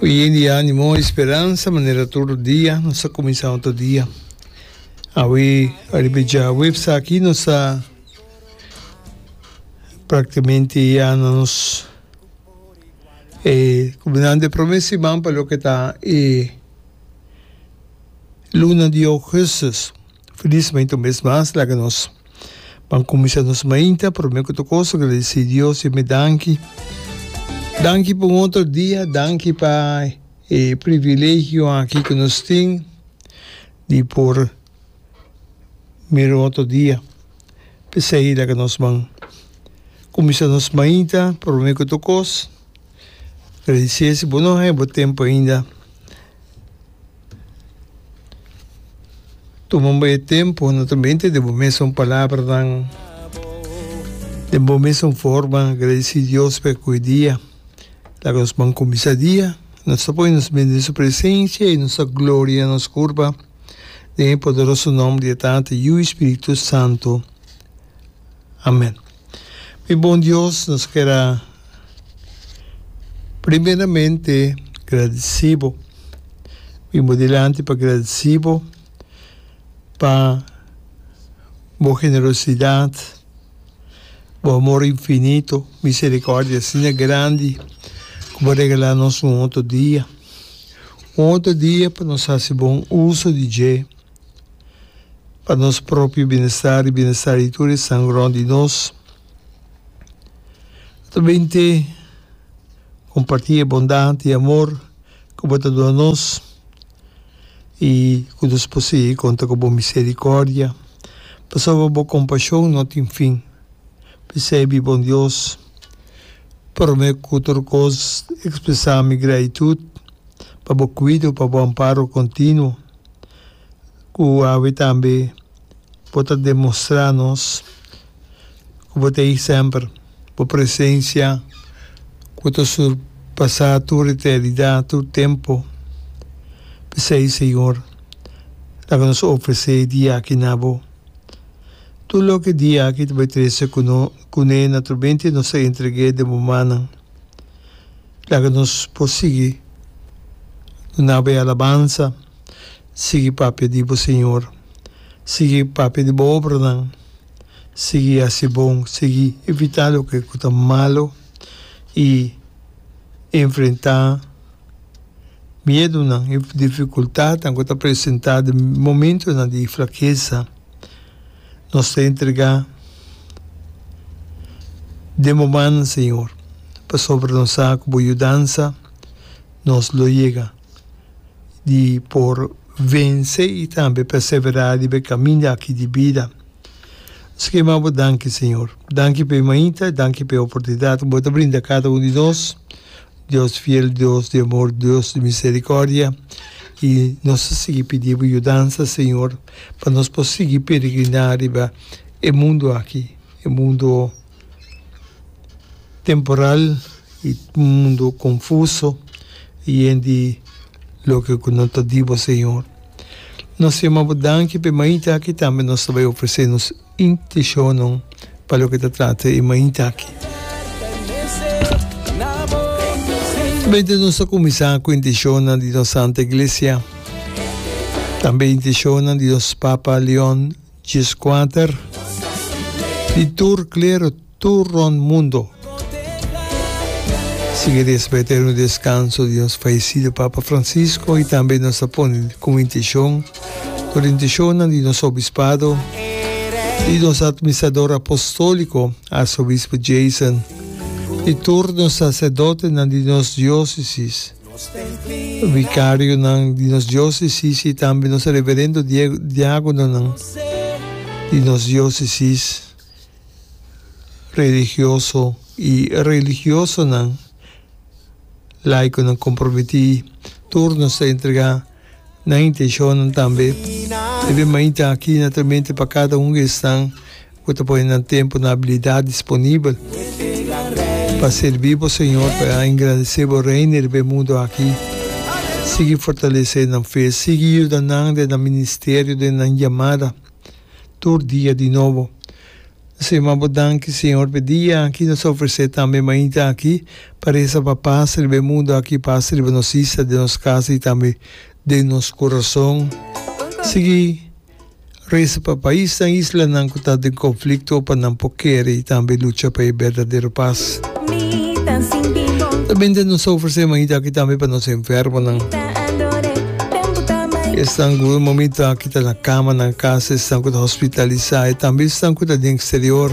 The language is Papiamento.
Yen di animo y speransa manera tur dia nos a cuminsa otro dia. Awe ariba e dja webs aki nos a practicamente ya na nos e cuminando e prome siman pa loke ta e luna di augustus. Felizmente un bes mas laga nos. Pan kuminsá nos mainta, promé ku ta kos agradesí Dios i mi danki. Danki pa un otro dia, danki pa e privilegio aki ku nos tin di por mira un otro dia. P'esei laga nos ban kuminsá nos mainta, promé ku ta kos agradesí e si bo no haña bo tempu ainda. Toman bo e tempo no ta bente de bo mesun palabranan, den bo mesun forma agradeci Dios pa e koe dia. Laga nos ban cuminsa dia, nos ta pone nos mente den su presencia y nos ta gloria na nos curpa den e poderoso nomber di e Tata, Yu y Spiritu Santo. Amen. Mi bon Dios, nos ker a primeramente gradeci bo. Bin bo dilanti pa gradeci bo pa bo generosidad, bo amor infinito, misericordia asina grandi cu bo regala nos un otro dia. Un otro dia pa nos haci bon uso di dje. pa nos propio bienestar y bienestar di tur esnan rond di nos. Ta bin te comparti e bondad y amor cu bo ta duna nos y cu nos por sigui conta cu bo misericordia pasobra bo compasion no tin fin. P'esey mi bon Dios, prome cu tur cos expresa mi gratitud pa bo cuido, pa bo amparo continuo. Ku awe tambe bo ta demostrá nos ku bo ta ei semper. Bo presensia ku ta surpasá tur eternidat, tur tempu. P'esei, Señor, laga nos ofresé e dia aki na bo. Tur loke e dia aki ta bai trese kuné, naturalmente nos ta entreg'é den bo mannan. Laga nos por sigui dunaba e alabansa, sigui papia di bo Señor, sigui papia di bo obranan, sigui hasi bon, sigui evitá loke ku ta malu i enfrentá miedunan i difikultatnan ku ta presentá den momentunan di flakesa. Nos ta entregá den bo man, Señor, pasobra nos sa cu bo yudansa nos lo yega di por vence y tambe perseverá riba e caminda aki di bida. Nos ta kima bo danki, Señor. Danki pa e mainta y danki pa e oportunidad cu bo ta brinda cada un di nos, Dios fiel, Dios di amor, Dios di misericordia. Y nos ta sigui pidi bo yudansa, Señor. pa nos por sigui peregriná riba e mundu aki, e mundu temporal, e mundu konfuso, yen di loke ku no ta dibo, Señor. Nos yama Bo danki p'e mainta aki tambe nos ta bai ofresé nos. Intishonnan pa loke ta trata e mainta aki. Tambe nos ta kuminsá ku intishonnan di nos Santa Iglesia, tambe intishonnan di nos Papa Leon Djis Kuater, di tur klero, tur rond mundo. Sigue di espa eterno descanso di nos fallecido Papa Francisco y tambe nos ta pone como intencion tur intencion di nos Obispado y nos Administrador Apostolico Arzobispo Jason y tur nos Sacerdotenan di nos Diocesis, Vicarionan di nos Diocesis y tambe nos Reverendo Diagononan di nos Diocesis. religioso i religiosonan laikonan komprometí tur nos ta entregá nan intenshonnan tambe. E de mainta aki na Tremente pa kada un di esnan ku ta pone nan tempu, nan abilidat disponibel pa serví bo Señor, pa engrandesé bo Reino riba e mundu aki. Sigui fortalesé nan fe, sigui yuda nan den nan ministerio, den nan yamada. tur dia di nobo. Nsema bo danki, Señor, p'e dia aki nos a ofresé tambe mainta aki pa resa pa pas riba e mundu aki, pas riba nos isla, den nos kasa i tambe den nos kurason. Sigui resa pa paisnan, islanan ku ta den konflikto pa nan por kere i tambe lucha pa e berdadero pas. Usualmente nos a ofresé mainta aki tambe pa nos enfermonan. Esnan ku momintu aki. ta na kama nan kasa esnan ku ta hospitalisá e tambe esnan ku ta den eksterior.